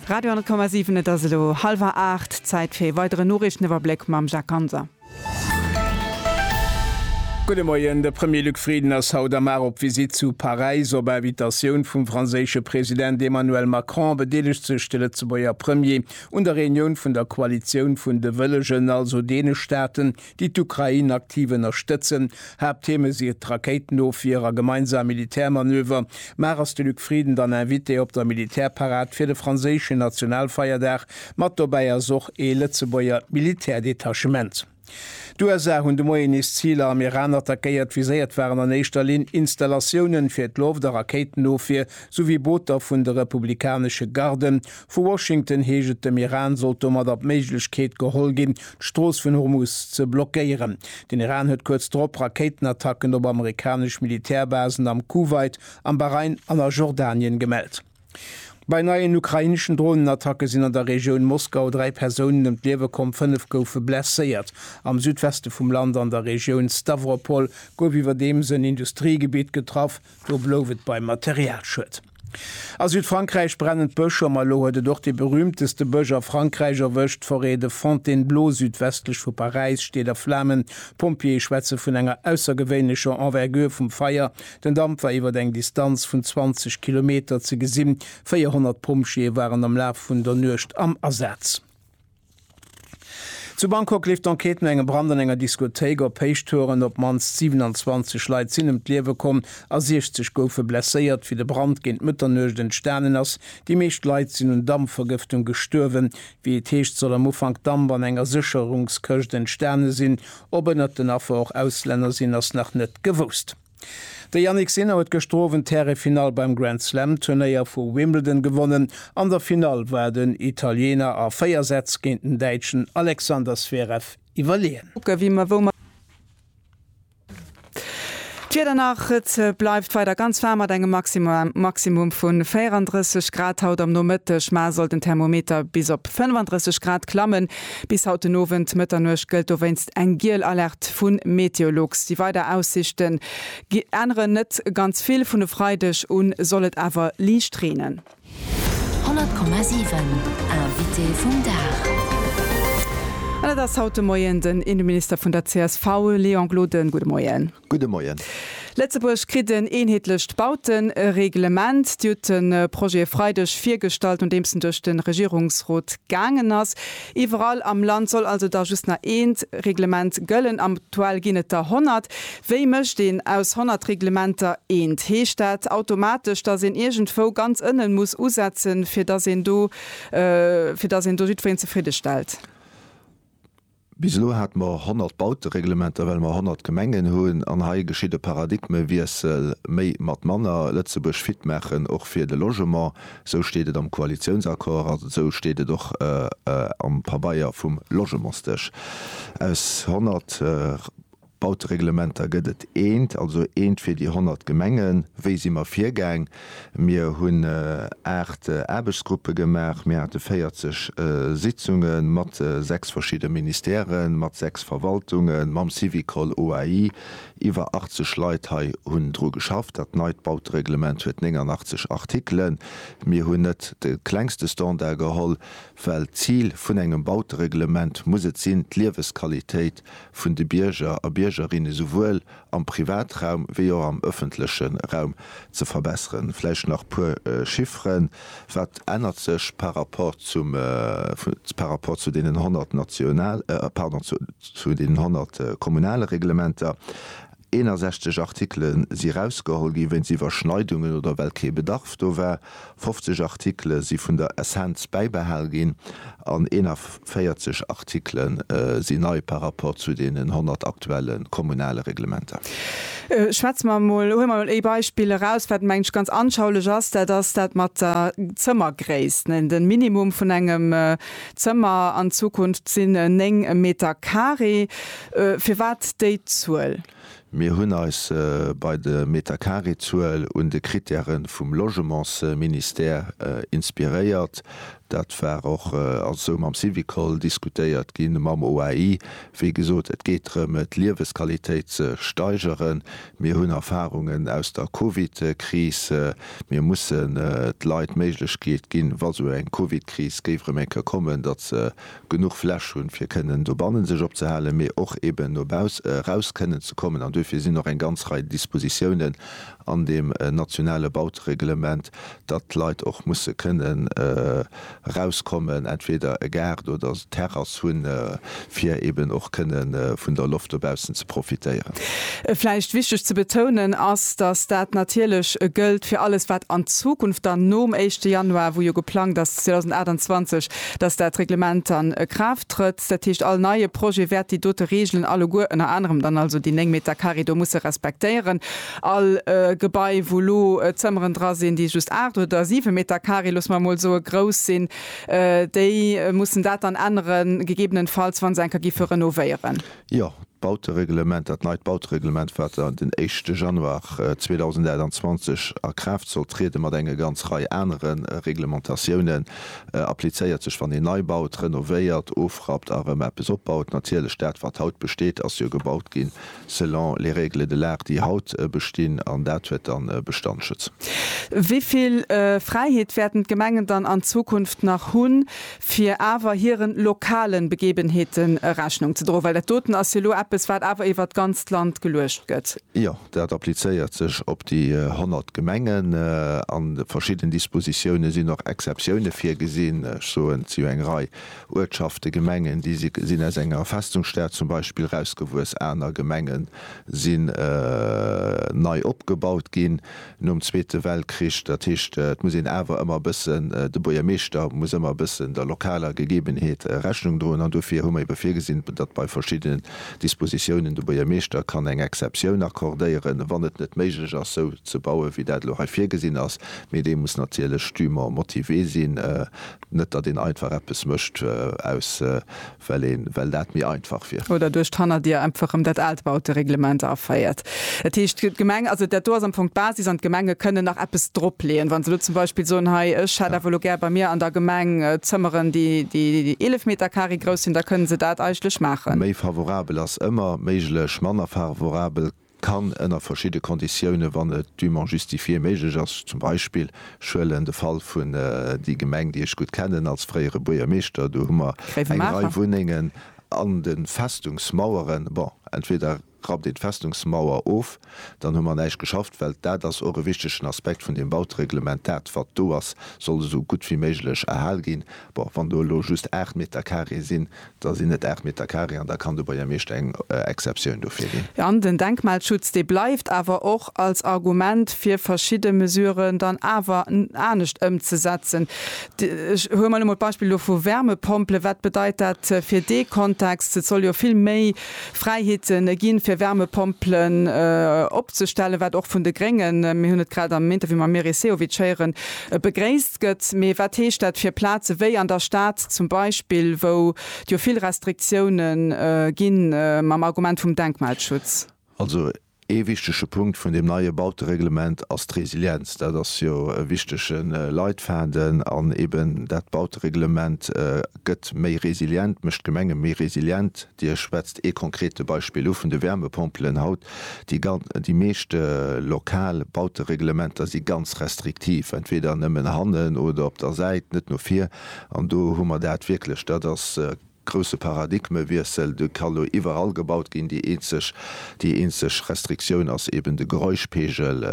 Radio 10,7 Et ass elo hallwer 8, Zäit fir ee weideren Noriichteniwwerbléck mam Jacques Ganser. Gudde Moien, De Premier Luc Frieden ass haut am Mar op Visitt zu Paräis. Op Invitatioun vum franséische President Emmanuel Macron bedeelegt sech de Lëtzebuerger Premier un der Reunioun vun der Koalitioun vun de Wëllegen, also deene Staaten, déi d'Ukrain aktiv ënnerstëtzen. Haapttheme si et d'Rakéitenofwier a gemeinsam Militärmanöver. Mar ass de Luc Frieden dann Invité op der Militärparad fir de franséischen Nationalfeierdag? Mat dobäi ass och ee Lëtzebuerger Militärdetachement. D'USA hunn de Moien nees Ziler am Iran attackéiert. Viséiert waren an éischter Linn Installatiounen fir d'Loft a Rakéitenofwier souwéi Booter vun de republikanesche Garden. Vu Washington heescht et, dem Iran sollt domadder d'Méiglechkeet geholl ginn, d'Strooss vun Hormuz ze blockéieren. Den Iran huet kuerz drop Rakéitenattacken op amerikanesch Militärbasen am Kuwait, am Bahrain an a Jordanien gemellt. Bei neien ukraineschen Dronenattacke sinn an der Regioun Moskau dräi Persounen ëm d'Liewe komm, fënnef goufe blesséiert. Am Südweste vum Land an der Regioun Stawropol gouf iwwerdeems en Industriegebitt getraff. Do blouf et beim Materialschued. A Südfrankräich brennen d'Bësch an elo huet et och dee berüümteste Bësch a Frankräich erwëscht, d'Forêt de Fontainebleau südwestlech vu Paräis steet a Flamen. D'Pompjeeë schwätze vun enger aussergewéinlecher Envergure vum Feier, den Damp war iwwer eng Distanz vun 20 Kilometer ze gesinn. 400 Pompjeeë waren am Laf vun der Nuecht am Asaz. Zu Bangkok leeft d'Enquête no engem Brand an enger Diskothéik. Op Héichtouren op d'mannst 27 Leit sinn ëm d'Liewe komm a 60 goufe blesséiert, wéi de Brand géint Mëtternuecht entstanen ass. Déi meescht Leit sinn un Dampvergëftung gestuerwen. Wéi et heescht, soll am Ufank Damp an enger Sécherungskëscht entstane sinn. Ob ënnert den Affer och Auslänner sinn, ass nach net gewousst. De Jannik Sinner huet gëschter Owend d'Härefinall beim Grand Slam Turnéier vu Wimbledon gewonnen. An der Finall war den Italiener a 4 Sätz géint den Däitschen Alexander Zverev iwwerleeën. D'Wieder nach, Et bleift weider ganz waarm mat engem Maximum vu 34 Grad haut am Nomëtteg. Mar soll den Thermometer bis op 35 Grad klammen. Bis haut den Owend, Mëtternuecht, gëllt dowéinst eng giel Alerte vu Meteolux. Déi weider Aussiichte änneren net ganz vill, vun e Freideg u soll et awer liicht reenen. 100,7 Invité vum Dag. An et ass haut de Moien den Inneminister vun der csv, Léon Gloden. Gudde Moien. Gudde Moien. Lëtzebuerg kritt en eenheetlecht Bautereglement. Dir hutt de Projet e Freideg virgestallt, nodeems en duerch de Regierungsrot gaangen ass. Iwwerall am Land soll also da just nach ee Reglement gëllen. Aktuell ginn et der 100. Wéi mécht een aus 100 Reglementer eent? Heescht dat automatesch, dass een iergendwou ganz ënnen muss usetzen, fir dass een do fir dass een do jiddwereen zefridde stellt? Bis elo hate mer 100 Bautereglementer, well mer 100 Gemengen hunn. An hei geschitt e Paradigmewiessel, Méi mat manner, Lëtzebuerg fit maachen, och fir de Logement. Esou steet et am Koalitiounsaccord an esou steet et och am Pabeier vum Logementsdësch. Aus 100. Bautereglementer gëtt et eent, also eent fir déi 100 Gemengen. Wéi si mer virgaang? Mir hunn 8 Aarbechtsgruppe gemaach, mir hate 40 Sitzunge mat 6 verschidde Ministèrë, mat 6 Verwaltunge, mam Syvicol OAI. Iwwer 80 Leit hei hunn dru geschafft. Dat neit Bautereglement huet 89 Artikelen. Mir hunn net de klengste Standard geholl, well d'Zil vun engem Bautereglement muss et sinn, d'Liewesqualitéit vun de Bierger a Biergerinne souwuel am Privatraum wéi och am ëffentleche Raum ze verbesseren. Vläicht nach e puer Chiffren, Wat ännert sech par rapport zum, par rapport zu deenen 100 national, pardon, zu deenen 100 kommunale Reglementer? 61 Artikele si erausgeholl gi wéinst Iwwerschneidungen oder well kee Bedarf do war, 50 Artikele si vun der Essenz bäibehal ginn an 41 Artikele si nei par rapport zu deenen 100 aktuelle kommunale Reglementer. Schwätze mer emol, huele mer emol ee Beispill eraus, wat menge ech ganz anschaulech ass, dat ass dat mat der Zëmmergréisst. De Minimum vun engem Zëmmer an Zukunft sinn 9 Meter carré. Firwat déi Zuel? Mir hunn eis bei de Metercarré-Zuel un de Krittäre vum Logementsministère inspiréiert. Dat war och esou mam Syvicol diskutéiert ginn, mam OAI. Wéi gesot, et geet drëm, d'Liewesqualitéit ze steigeren. Mir hunn Erfarungen aus der Covid-Kris. Mir mussen de Leit d'Méiglechkeet ginn, wa sou eng Covid-Kris géif erëm eng Kéier kommen, datt se genuch Fläch hunn, fir kënnen dobannen sech opzehalen, mee och eeben no baus eraus kënnen ze kommen. An duerfir sinn och eng ganz Rei Dispositiounen an deem nationale Bautereglement, datt d'Leit och musse kënnen erauskommen, entweder e Gaart oder Terrass hunn, fir eeben och kënne vun der Loft dobaussen ze profitéieren. Vläicht wichteg ze betounen ass, datt dat natierlech gëllt fir alles, wat an Zukunft dann nom éischte Januar, wou jo geplangt ass 2028, dass dat Reglement dann a Kraaft trëtt, dat heescht all neie Projet wäert déi dote Regeln alleguer, ënner anerem dann also déi 9 Meter carré do musse respektéieren. All Gebai wou elo Zëmmeren dra sinn, déi just 8 oder 7 Meter carré, loosse mer emol soe, grouss sinn, déi mussen dat dann änneren, gegebenenfalls wa se enker gi fir renovéieren. Jo, d'Bautereglement, dat neit Bautereglement, wat dann den éischte Januar 2028 a Kraaft soll trieden, mat enge ganz Rei anere Reglementatiounen, applizéiert sech, wann een nei baut, renovéiert, ofrappt a rëm eppes opbaut. Natierlech, dat, wat haut besteet, ass jo gebaut ginn selon les règles de l'art, déi haut bestinn, an dat huet dann Bestandsschutz. Wéi vill Fräiheet wäerten d'Gemengen dann an Zukunft nach hunn, fir awer hiren lokalen Begebenheeten Rechnung ze droen, well dat doten ass jo elo eppes, wat awer iwwert d'ganzt Land geluecht gëtt. Jo, dat applizéiert sech op déi 100 Gemengen. A verschidden Dispositiounen sinn och Exceptioune virgesinn. Ech soen, et si jo eng Rei Uertschaften, Gemengen, déi sinn aus enger Festungsstad zum Beispill erausgewuess, aner Gemenge si nei opgebaut ginn. nom Zweete Weltkrich, dat heescht et muss een awer ëmmer e bëssen, de Buergermeeschter muss ëmmer e bëssen der lokaler Gegebenheet Rechnung droen an dofir hu mer ebe virgesinn, datt bei verschiddenen Dispositiounen de Buergermeeschter kann eng Exceptioun accordéieren, wann et net méiglech ass esou ze bauen, wéi dat elo hei virgesinn ass. Mee dee muss natierlech dûment motivé sinn, net datt een einfach eppes mécht aus, well een well dat méi einfach wier. Oder duerch d'Hannerdier einfach rëm dat aalt Bautereglement aféiert. Dat heescht, d'Gemeng, also dat do ass am Fong d'Basis an d'Gemenge kënnen nach eppes dropleeën, wa se elo zum Beispill soen, hei ech hätt awer elo gär bei mir an der Gemeng Zëmmeren, déi 11 Metercarré grouss sinn, da kënnen se dat eigentlech maachen. Méi favorabel ass ëmmer méiglech, manner favorabel kann ënner verschidde Konditioune, wann et dûment justifié méiglech ass, zum Beispill, ech huelen de Fall vun déi Gemeng, déi ech gutt kennen als fréiere Buergermeeschter, do hu mer eng Rei Wunnengen an de Festungsmaueren, bon, entweder rappt een d'Festungsmauer of, dann hu mer näischt geschafft, well dat ass och e wichtegen Aspekt vun deem Bautereglement, dat wat do ass, soll esou gutt wéi méiglech erhal ginn. Bon, wann do elo just aacht Meter carré sinn, Da sinn et 8 Meter carré an da kann de Buergermeeschter eng Exceptioun dofir ginn. An den Denkmalschutz, dee bleift awer och als Argument, fir verschidde Mesuren dann awer anescht ëmzesetzen. Ech hole mol emol d'Beispill elo vu Wärmepompelen. Wat bedeit dat fir dee Kontext? Et soll jo vill méi Fräiheete ginn, fir Wärmepompelen opzestellen, wat och vun de Gréngen, mir hunn et grad am Interview mam Meris Sehovic héieren, begréisst gëtt, mee wat heescht dat fir Plaze wéi an der Stad zum Beispill, wou et jo vill Restriktioune gi mam Argument vum Denkmalschutz? Also ee wichtege Punkt vun deem neie Bautereglement ass d'Resilienz. Dat ass jo e wichtege Leitfaden an eeben dat Bautereglement gëtt méi resilient, mécht d'Gemenge méi resilient. Dir schwätzt ee konkrete Beispill u vun de Wärmepompelen haut. Déi meescht lokal Bautereglementer si ganz restriktiv, entweeder nëmmen hannen oder op der Säit, net no vir. An do hu mer dat wierklech. Dat ass e grouse Paradigmewiessel. Do ka lo iwwerall gebaut ginn. Déi eenzeg Restriktioun ass eeben de Geräuschpegel.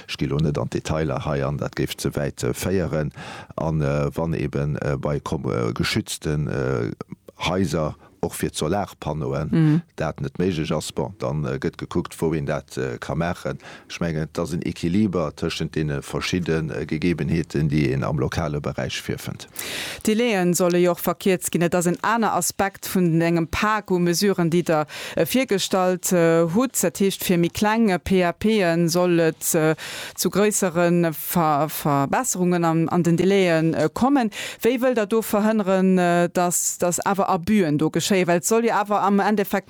Ech gi lo net an d'Detailer hei an, dat géif ze wäit féieren. A wann eeben bei geschützten Haiser och fir d'Solarpannoen, dat net méiglech ass, bon, da gëtt gekuckt, wou een dat ka maachen. Ech mengen, et ass en Equiliber tëschent deene verschidde Gegebenheeten, déi een am lokale Beräich virfënnt. D'Delaie solle jo och verkierzt ginn. Dat ass en aner Aspekt vun engem Pak u Mesuren, déi Der virgestallt hutt. Dat heescht, fir méi kleng PAPe soll et zu gréissere Verbesserungen an den Délaië kommen. Wéi wëllt Der do verhënneren, dass awer Abus'en do geschéien? Well et soll jo awer am Endeffekt.